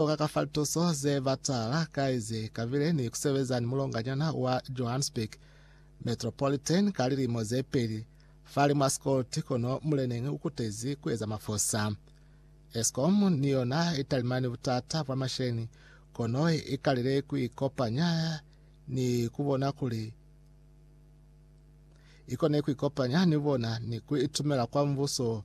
Koka ka fa lituso ze batala kai ze kabile ni kusebeza ni mulonganyana wa Johannesburg Metropolitan ka lilimo ze peli, fali mwa Scott, kono muleneñi ukutezi kueza mafosa. Eskom ni yona italimani butata bwa masheni, kono ikalile kuikopanya ni kubona kuli ikone kuikopanya ni bona ni kuitumela kwa mbuso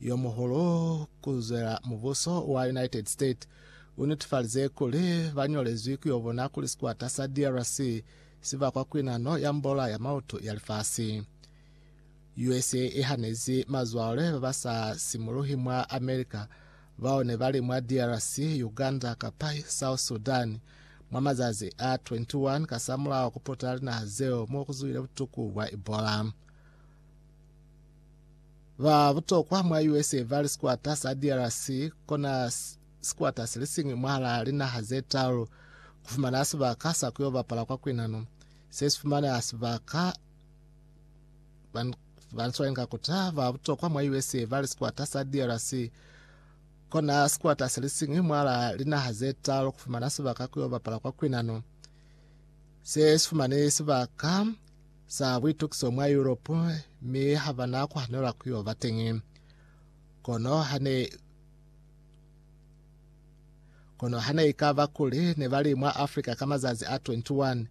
yo muhulu ku zwela mubuso wa United States u netifalize kuli ba ñolezwi ku yo bona kuli sikwata sa DRC si bakwa ku inano ya mbola ya mautu ya lifasi. USA i hanezi mazwale ba ba sa simuluhi mwa America bao ne ba li mwa DRC, Uganda kapa South Sudan mwa mazazi a 21 kasamulaho ku putela linaha zeo mo ku zwile butuku bwa Ebola. Ba butokwa mwa USA ba li sikwata sa DRC kona sikwata se li siñwi mwahalaa linaha ze taalu ku fumana sibaka sa ku yo bapala kwa kwinano. Se si fumana sibaka ba ni swalinga kuta ba butokwa mwa USA ba li sikwata sa DRC kona sikwata se li siñwi mwahalaa linaha ze taalu ku fumana sibaka ku yo bapala kwa kwinano. Se si fumane sibaka za buitukiso mwa Yuropu, mi ha ba na ku hanelwa ku yo ba teñi. Kono ha ne Kono ha ne i ka ba kuli ne ba li mwa Afrika ka mazazi a 21,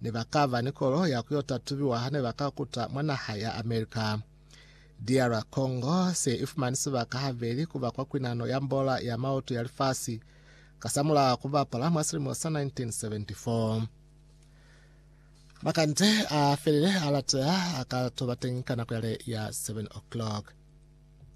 ne ba ka ba ni kolo ya ku yo tatubiwa ha ne ba ka kuta mwa naha ya America. DR Congo se i fumani sibaka habeli ku ba kwa kwinano ya mbola ya maoto ya lifasi kasamulaho ku bapala mwa silimo sa 1974. Makande a felele a lateha a ka toba teñi ka nako yale ya 7 o'clock.